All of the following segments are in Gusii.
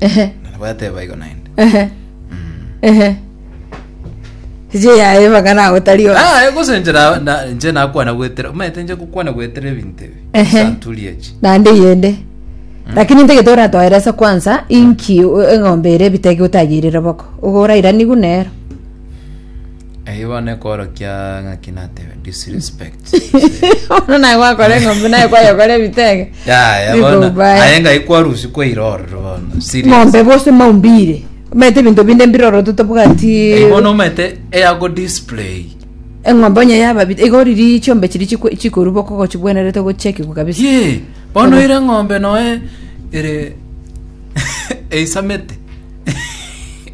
Ehe. Na nabo yateba igo naende. Ehe. Ehe. Eche yaye mpaka nagotari oyo. Ah, eh, gose nche na- na- nche nakwana gwetera. Omanyete nche gokwana gwetera ebinto ebi. Ehe. Santuri echi. naende yende lakini ntagete oratoeresa kwanza inki o- eng'ombe ere ebitege otayeirire boko ogo orairanigu nero Eyio bono ekorokia ng'aki natebe disrespect. Bono naye gwakora eng'ombe naye kwayokora ebitege. Yaya Biko bono baya. aye ng'ai kwarusi kwaira ororo bono. Serious. Ng'ombe bose maumbire. Omanyete ebinto binde mbirorote tobwati. Eyio bono omanyete eyago display. Eng'ombe onye yaba bit- iga oriri chiombe chiri chikwe- chikorwa boko gochibwenerete gochekigwa kabisa. Ye, bono Obo. ire ng'ombe noe ere eisamete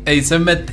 eisemete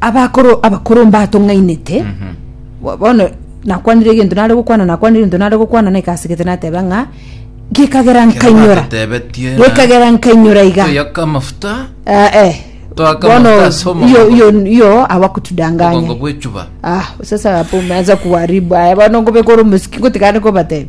Abakoro abakoro mbatong'ainete, bo- bono nakwanire egento nare gokwana, nakwanire egento nare gokwana, na ekasegete nateba ng'a gekagera nkainyora, Tebetie gekagera nkainyora iga. Toyaka amafuta Ah, eh. Toaka Bono, amafuta ase iyo, omogongo. iyo, iyo obogongo awakutudanganya. bw'echuba. Ah, sasa hapo umeanza kuharibu. Aya bwana ngobeka ore musiki ngotikane kobatebe.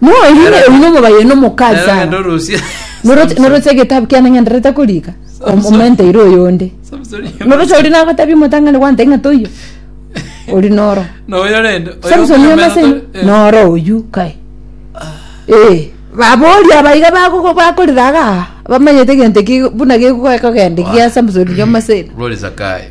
No eri Era- eri nomobaye no mokazi Era sana. ng'ende orusie Noroche Samson. noroche egetabu kiane ngenderete korika. Samson. Omente ire oyonde. Samson. Noroche ori nagotabia omotang'ani gwante ng'a toiyo. Ori noro. Na oyo rende oyo Samson okonya yamase meno to- eh. noro oyu kai. Eh, babori abaiga bagogo bakorira aga. Bamanyete egento ki buna gekogendeki ya Samson yamase. Rori Zakayo.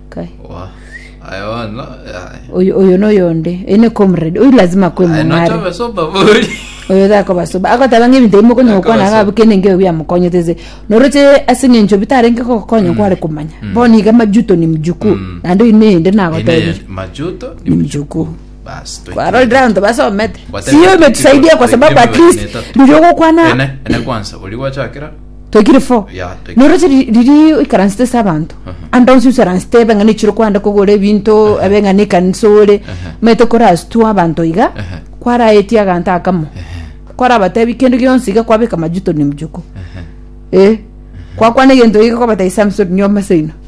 Kai. Wa. Aye bono. Aye. oyo oyo noyonde oyo ne comrade oyo lazima kwe Aye mong'are nochobe sopa bori. oyo takoba soba agoteba ng'a ebinto bimwe konya Akoba gokwana soba. gabu kende ngeo biamokonyete se noroche ase ng'encho bitarenge gokonya kware komanya bono iga majuto ni mjukuu naende oyo nende Ine nagotebire ye- majuto ni mjukuu basi toikie. kwarorire abanto basomete Watari- siyo imetusaidia kwa sababu at least Ene- riria ogokwana ene ene kwanza ori gwachakera Toikire fo. Yeah, toikire. Noroche ri- riri oikaransete ase abanto ande onsi osaransete ebe ng'a nichire kwande kogora ebinto ebe ng'a nekanisa ore maete okorastwa abanto iga kwaraetie aganto akamo kwarabatebi kende gionsi iga kwabeka majuto na emchuko eh kwakwana egento iga kwabatebia samson nyoma seino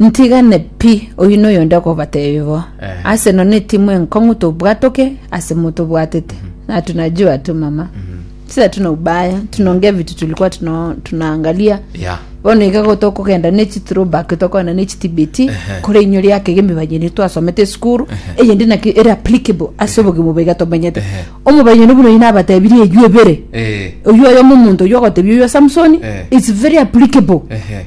Ntigane pi, oyio noyo onde okobatebia bo. Eh. Ase none etimu enkong'u tobwatoke ase motobwatete. Na tunajua tu mama. Sisi hatuna ubaya, tunaongea vitu tulikuwa tuna, tunaangalia. Yeah. Bono iga go tokogenda ne chithrowback tokogenda ne chitibeti Ehe. kore inyo riake iga emibayani twasomete esukuru eyende naki ere applicable ase obogima obo iga tomenyete. Ehe. Omobayani buna oyi nabatebirie eyio ebere. Eh. Oyio oyomo omonto oyio ogotebia oyio Samsoni Eh. it's very applicable. Ehe.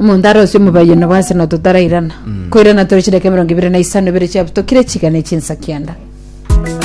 Omonto arosie omobaia onobo ase na totarairana, koirana tore chidaka emerongo ibere na isano ibere chiabutokire chigane chinsa kianda.